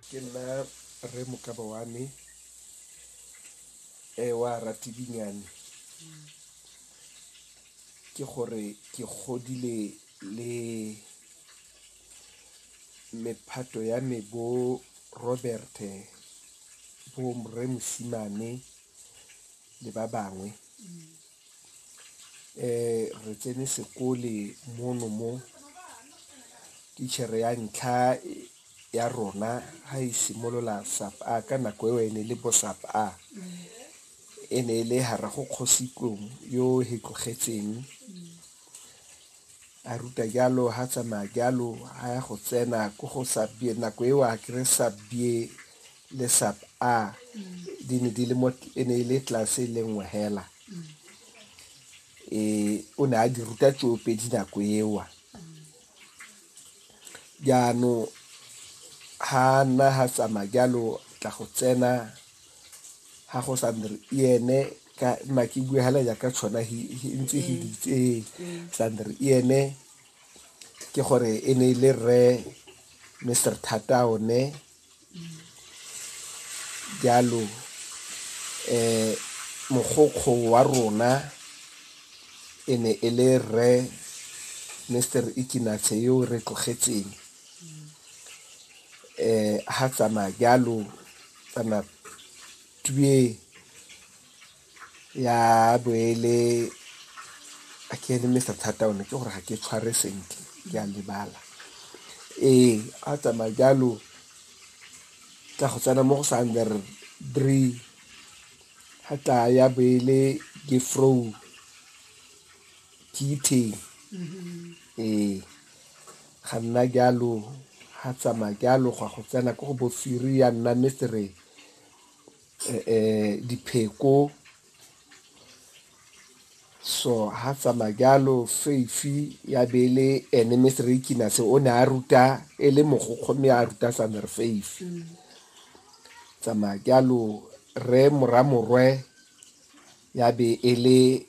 ke nna rre mokaba wa me e wa ratidinyane ke gore ke godile le mephato ya me bo robert bo mre mosimane le ba bangwe Re tsene sekole mono mo, titjhere ya ntlha ya rona ha e simolola sub a, ka nako eo e ne e le bo sub a, e ne e le Haragokgositlong yo he tlogetseng. A ruta jalo, ha tsamaya jalo, ha ya go tsena ko go sub B. Nako eo a kry sub B le sub A di ne di le mo e ne e le tlase le nngwe hela. E o ne a di ruta tsoopedi nako eo. Jaanong ha nna ha tsamaya jalo tla go tsena ha go sa nne ene ka nna ke bue hela jaaka tshwana ntse he ditse ee tla nne ene ke gore e ne e le rre mr thata one jalo um mogokgo wa rona e ne e le rre mr ikinatshe yo re tlogetseng um ha tsamaya jalo kana tue ya boele a ke ene mr thata one ke gore ga ke tshware sentle ke a lebala ee a tsamaya jalo tla go tsena mo go sa under three ga tla ya boele ke frow ke itheng ee Ga nna jalo, ga tsamaya jalo go a go tsena ko go bo firi ya nna mesere um dipheko so ga tsamaya jalo feifi ya be e le ene mesere ikinase o ne a ruta e le mogokgo mme a ruta sane re feifi tsamaya jalo re moramorwe ya be e le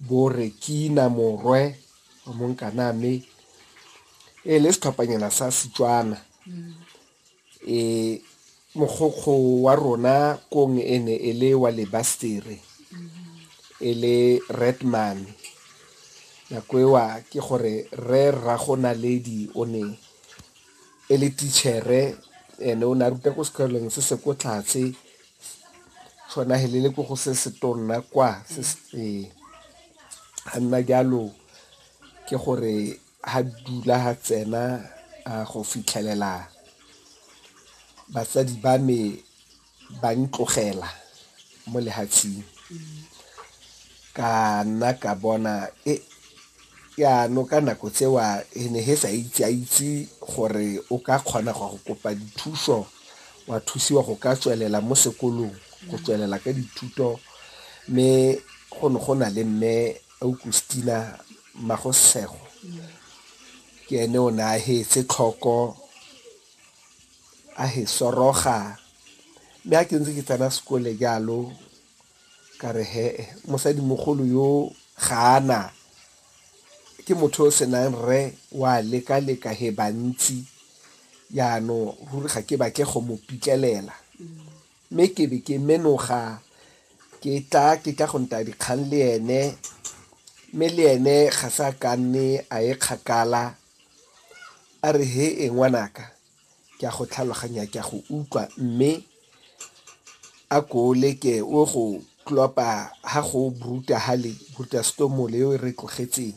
Borekina Morwe wa Monkaname e le setlhophanyana sa Setswana e mogokgo wa rona kong e ne e le wa lebastere e le redman nako ewa ke gore re rrago naledi o ne e le tichere ene o ne a ruta ko sekolong se se ko tlhatse Tshwana he le ko go se se tonna kwa se se ee ga nna jalo ke gore ha dula ha tsena go fitlhelela batsadi ba me ba ntlogela mo lehatsheng ka nna ka bona e Jaanong ka nako tseo e ne he sa itse a itse gore o ka kgona go go kopa dithuso wa thusiwa go ka tswelela mo sekolong go tswelela ka dithuto mme go ne go na le mme Augustina Magosego ke ene o ne a hetse tlhoko a he soroga mme a ke ntse ke tsena sekole jalo Ka re, He-e, mosadimogolo yoo ga a na. Ke motho yo o senang rre, o a lekaleka, he, bantsi. Jaanong ruri ga ke batle go mo pitlelela. Mme ke be ke menoga ke tla, ke tla go ntaya dikgang le ene, mme le ene ga se a ka nne a ye kgakala. A re, He-e, ngwanaka. Ke a go tlhaloganya, ke a go utlwa, mme a ko o leke o go klopa ha go bruta hale, bruta storm le e re tlogetseng.